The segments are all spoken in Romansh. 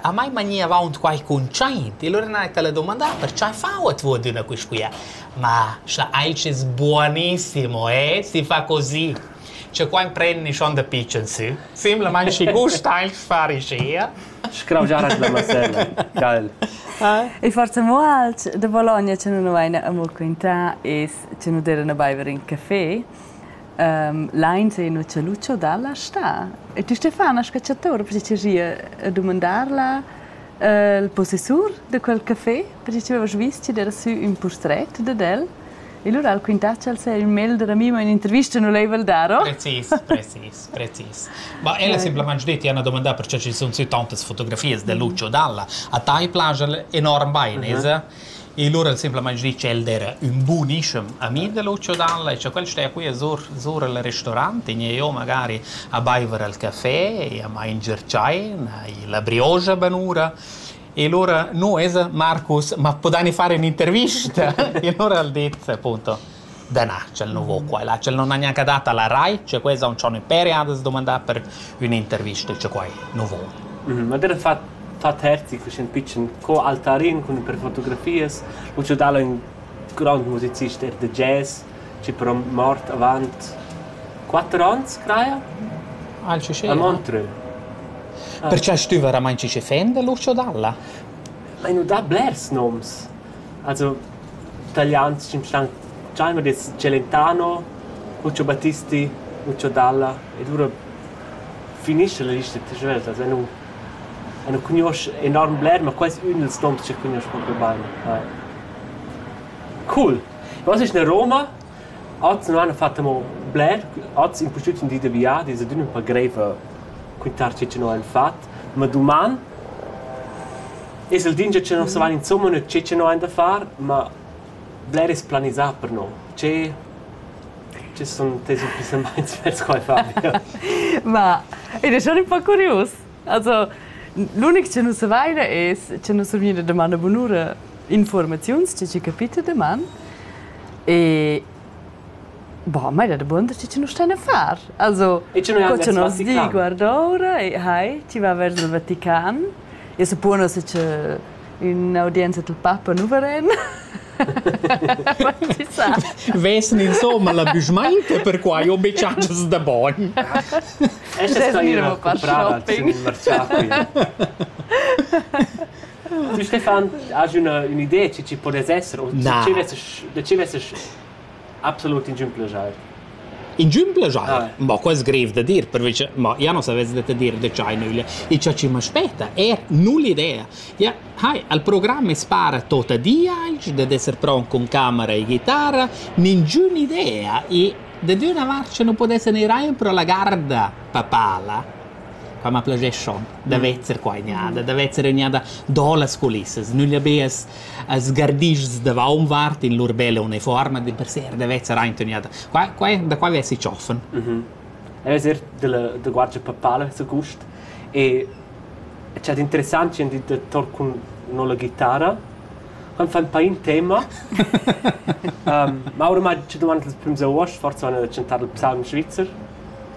A mai mani avaunt quai cuntschaint e lura n'hai tala dumandà per cha fauet vo ad üna quisquia. Ma scha ais es buonissimo eh, si fa così. Scha qua imprendi schon da pitschen sü. Simplamaing schi gust aint far ischia. Scraugiar la masella, geil. Il forza mo alt da Bologna che nu vaina amo quintà es che nu d'eira na baiver in café. Lain se Nuccio Lucio dalla stà. E ti Stefana Scacciatore, perché ti gie dumandar la il possessur da quel café, perché ti avevas vis ti era sü ün purtret dad el. E lura al quintaci al se il mail della mima in intervista non l'hai daro. Precis, precis, precis. Ma ella ha semplicemente detto, io ho domandato perché ci sono tantas fotografias di Lucio Dalla. A te piace enorm bene, uh-huh. E lura el simplamaing dis ch'el d'eira ün bunischem ami da Lucio Dalla e cha quel steja qui a zur zur al restorant, i gniva jo magari a baiver al cafè e a manger tschaina e la brioza banura. E lura, nu, esa Marcus, ma pudani fare ün'intervista? E lura al dit appunto Da na, tschel nu vo qua e là. Tschel non ha gnanca dat a la rai, cioè quels haun dschony pere a da's dumandar per ün'intervista, cioè quai nu vo. Ma der fat fat Herzi faschend pitschen co altarin cun per fotografias, ho giodà el ün grond musicist er da jazz, chi però mort avant quatter ons, craja? Ah, il Ciché? A Montreux. Perche stüva ramain Ciché Fender l'uscio dalla? Ai nu dà blers noms. Also talians sunstan dschaiver dess Celentano, Cuccio Battisti, Muccio Dalla e lura finischa la lista svelt. Also nu eu nu cugnuosch enorm bler, ma quai es ün dals noms ch'eu cugnuosch propi bain. Vai. Cool! Oz ist in Roma, oz non hanno fatto amo bler, oz impustüt ün di da viadi, es adüna ün po greiv cuntar che no han fat, ma duman Es el dingia che nus vain insumma gnü tschit che no hain da far, ma bler es planisà per no. Tschè che sun tes impissamaints vers qua, Fabio? Ma ed è schon un po' curius. Also, l'unic che nus savaina es che nus vegniva da man a bunura informaziuns, tge che capita da man. E Boh, mai da damonda, schi chi nu stan a far. Also, co cha nos di guardoura e hai, chi va vers il Vatican. Eu suppuono se cha ün'audienza dal papa nu varan. Chi sa? Vesen insomma la büschmainta, perquai ho be chatschas da bogn. Esa staira comprada in il mercià qui. Tu Stefan, has üna ün'idea chi chi podess esser o Na. chi vessast da chi vessast absolut ingün plajer? Ingün plajer? Ah. Bo, quo es grev da dir, perche ma ja non savess da te dir da ch'hai nüglia. I cha chi m'aspetta è nu l'idea. Ja, hai, al programma es para tota diaig dad esser pron cun camera e ghitara, ningün idea e da d'üna vart sche nu podesse neir eir pro la garda papala, Qua ma plazeschond da vezer qua egnada, da vezer egnada do las culissas, nüglia be as as gardischs davaunvart in lur bella unifuorma dimpersè da vezer aint egnada. Qua qua da qua vesi tschoffen. El es eir della da Guardia Papale su Gust e c'è d'interessant chi han dit da tor cun no la ghitara. Han fa ün pa in tema. um, ma ormai ci dumand las prüms uost, forsa han da chantar il psalm svizzer.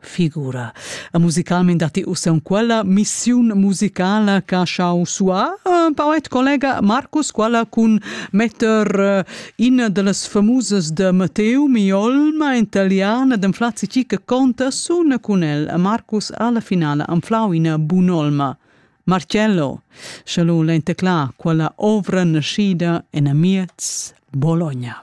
figura. E musicalment datti ussa quella missiun musicala che ha schau suar eh, poet collega Marcus, quella cun metter eh, in delles famoses de Matteo Miolma italiana den Flazzi che conta sun cun el. Marcus alla finale anflau in bunolma. Marcello, shallo l'entecla quella ovra nascida en amiez Bologna.